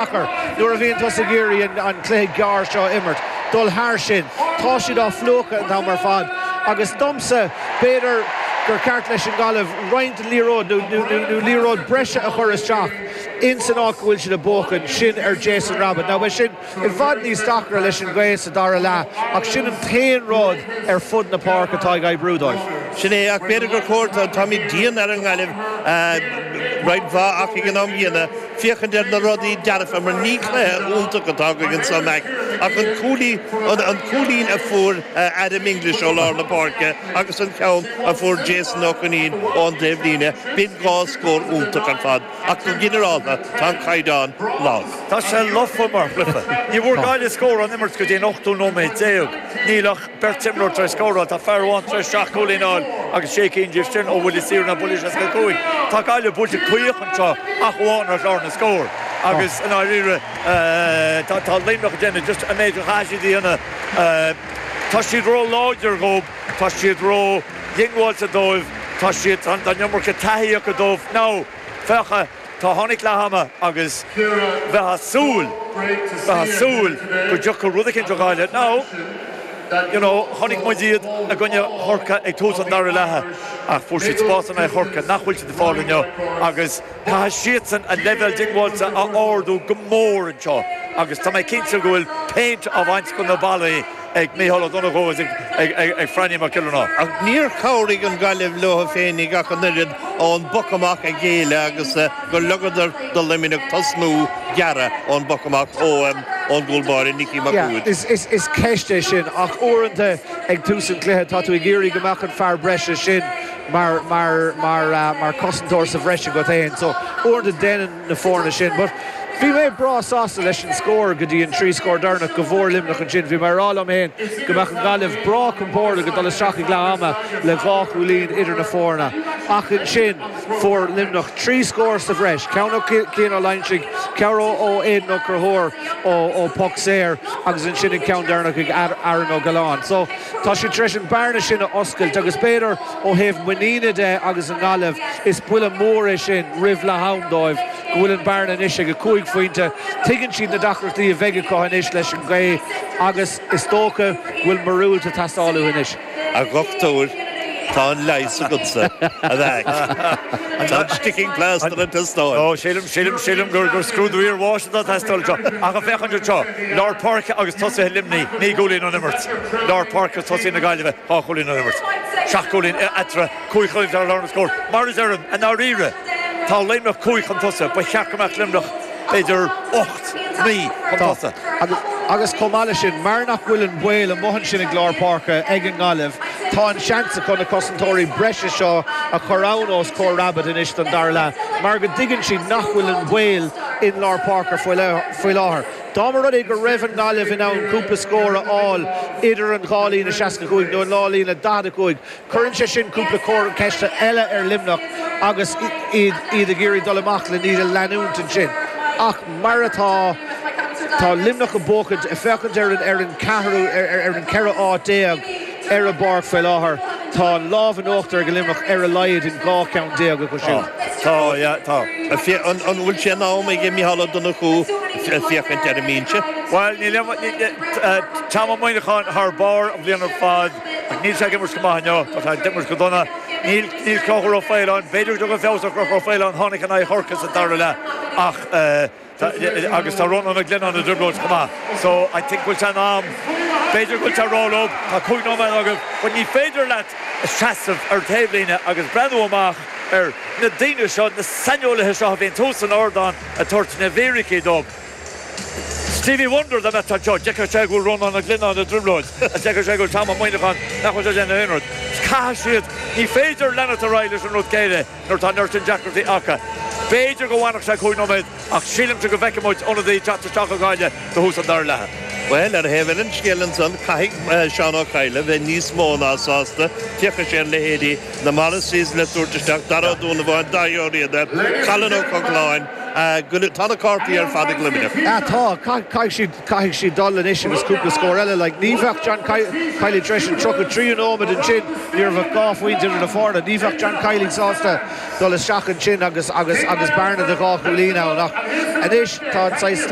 deacair nuair a bhíonn tusa ag iarraidh an cluiche gearr seo a imirt, dul thar sin. Tá siad á phlúchadh an t-am ar fad agus domsa, b'fhéidir gur cheart leis an nGaillimh roinnt liathróidí nó liathróid breise a chur isteach in san áit go bhfuil siad ag buachan, sin ar Jason Rabitte. Now beidh sin i bhfad níos deacra leis an ghaoth sa dara leath ach sin an t-aon rud ar fud na páirce atá ag oibriú dóibh. Sin é, ach b'fhéidir gur chóir, táimid dian ar an nGaillimh roinnt mhaith ach ag an am céanna, féachaint ar na rudaí dearfa mar ní cluiche iontach atá againn anseo, a Mhac, ach an cúilín, an cúilín a fuair Adam English ó lár na páirce agus an ceann a fuair Jason Ó Coinín ón dtaobhlíne, b'in dhá scór iontach ar fad ach go ginearálta tá an caighdeán leamh. Tá sé lofa mar chluiche. Ní bhfuair Gaillimh scór ón imirt go dtí an ochtú nóiméad déag. Níl ach. Beirt imreoir tar éis scóráil, tá fear amháin tar éis seacht gcúilín a fháil agus sé cinn díobh sin ó bhuillí saora nó buille 65. Tá Gaillimh buailte caoch anseo ach amháin ar chlár na scór agus, i ndáiríre, tá Luimneach ag déanamh just an méid a chaithfidh siad a dhéanamh. Tá siad ró-láidir dhóibh, tá siad ró-dhiongbháilte dóibh, tá siad, tá an iomarca taithí acu dóibh. Now, féach a. Tá, tháinig leath ama agus bheith a' súil, bheith a' súil go dtiocfadh rud eicínt ó Ghaillimh nó you know chonaic muid iad i gcoinne Chorcaí ag tús an dara leath ach fuair siad spás in aghaidh Chorcaí nach bhfuil siad ag fáil inniu agus caithfidh siadsan a leibhéal diongbháilte a ardú go mór anseo agus tá mé cinnte go bhfuil péint á bhaint de na ballaí ag Micheál Ó Donnchú is ag Franny Mac Giollarnáth. Ach níor chabhraigh an Gaillimh leo féin, a Mhac, an oiread ón bpoc amach a ghéilleadh agus gur ligeadar do Luimneach tosnú gearr ón bpoc amach óm ón gcúl báire Nicky Mac Uid. Is ceist é sin ach uaireanta ag tús an chluiche tá tú ag iarraidh go mbeadh an fear breise sin mar cosantóir sa bhreis agat fhéin so uaireanta déanann na foirne sin. But bhí mé breá sásta leis an scór go dtí an trí scór deireanach go bhfuair Luimneach ansin. Bhí mé ag rá liom féin go mbeadh an Ghaillimh breá compordach ag dul isteach ag leath ama le dhá chúilín idir na foirne. Ach ansin fuair Luimneach trí scór sa bhreis, ceann ó Chian Ó Loingsigh, ceann ó Aidan Ó Conchúir ó phoc saor agus ansin an ceann deireanach ag Aaron Ó Gealáin. So tá siad tar éis an bearna sin a oscailt agus b'fhéidir, Ó thaobh muiníne de agus an Ghaillimh is buille mór é sin roimh leath ama dóibh go bhfuil an bhearna anois ag a cúig phointe. Tuigeann siad na deacrachtaí a bheidh acu anois leis an ngaoth agus is dócha go bhfuil miorúilt ag teastáil uathu anois. A dhoctúir, tá an leigheas agatsa, a mhac. Tá an sticking plaster ag teastáil. Ó, sílim, sílim, sílim gur scrúdú iarbháis atá ag teastáil anseo. Ach ag féachaint anseo. Lár páirce agus tosaithe Luimnigh, naoi gcúilín ón imirt. Lár páirce agus tosaithe na Gaillimhe, dhá chúilín ón imirt. Seacht gcúilín eatarthu, cúig ar chlár na scór. Mar a deirim, i ndáiríre, tá Luimneach cúig chun tosaigh. Ba cheart go mbeadh Luimneach b'fhéidir ocht, naoi chun tosaigh. Agus chomh maith leis sin, mar nach bhfuil an baol amuigh ansin ag lár páirce ag an nGaillimh, tá an seans acu na cosantóirí breise seo a chur ann os comhair Rabbitte anois don dara leath mar go dtuigeann siad nach bhfuil an baol in lár páirce faoi l. faoi láthair. Dá mba rud é go raibh an Ghaillimh in ann cúpla scór a fháil idir an dhá líne 65 nó an dá líne 45, cuireann sé sin cúpla comhartha ceiste eile ar Luimneach agus iad ag iarraidh dul amach le iad a leanúint ansin. Ach mar atá, tá Luimneach ag buachaint, ag féachaint ar an 4ú, ar an 14 áit, ar an bpáirc faoi láthair. Tá an lámh in uachtar ag Luimneach ar a laghad in dhá cheann déag acu siúd. An bhfuil sé in am ag Micheál Ó Donnchú féachaint ar an mbinse? Bhuel, ní raibh Tom Ó Muineacháin thar barr an bhliain ar fad ach níl sé ag imirt go maith inniu. Tá sé ag imirt go dona. Níl Conchúr Ó Faoláin, b'fhéidir go dtagann feabhas ar Chonchúr Ó Faoláin, tháinig in aghaidh Chorcaigh sa dara leath, ach. Tá, agus tá Rónán Ó Glinneáin i dtrioblóid chomh maith. So, I think go bhfuil sé in am, b'fhéidir go bhfuil sé róluath, tá cúig nóiméad a thabhairt dóibh, but ní féidir leat seasamh ar taobhlíne agus breathnú amach ar na daoine seo, na saineolaithe seo a bhíonn thuas san ardán ag tabhairt na bhfíricí dóibh. Stevie Wonder dá mbeadh sé anseo, d'fheicfeadh sé go bhfuil Rónán Ó Glinneáin i dtrioblóid. D'fheicfeadh sé go bhfuil Tom Ó Muineacháin, nach bhfuil sé ag déanamh aon rud. Caithfidh siad, ní féidir leanacht ar aghaidh leis an rud céanna. Nuair atá neart deacrachtaí aca, b'fhéidir go bhfanfadh sé cúig nóiméad, ach sílimse go bhfeicfidh muid ionadaí ag teacht isteach ag Gaillimh do thús an dara leatha. Bhuel, ar thaobh eile an scéil ansan, caithfidh Seán Ó Cadhla bheith níos mó ná sásta. Féachaidh sé ar leithéidí na Morrisseys le tabhairt isteach, Darach Ó Donnabháin, Dáithí Ó Riada, Colin Ó Cochláin, tá na cártaí ar fad ag Luimneach. Tá, caithfidh siad. Caithfidh siad dul anois agus cúpla scór eile. Like, ní bheadh John Kiely tar éis an tríocha tríú nóiméad ansin, ní raibh ach dhá phointe idir na foirne, ní bheadh John Kiely sásta dul isteach ansin agus, agus, agus bearna de dhá chúilín ann ach anois tá an saghas,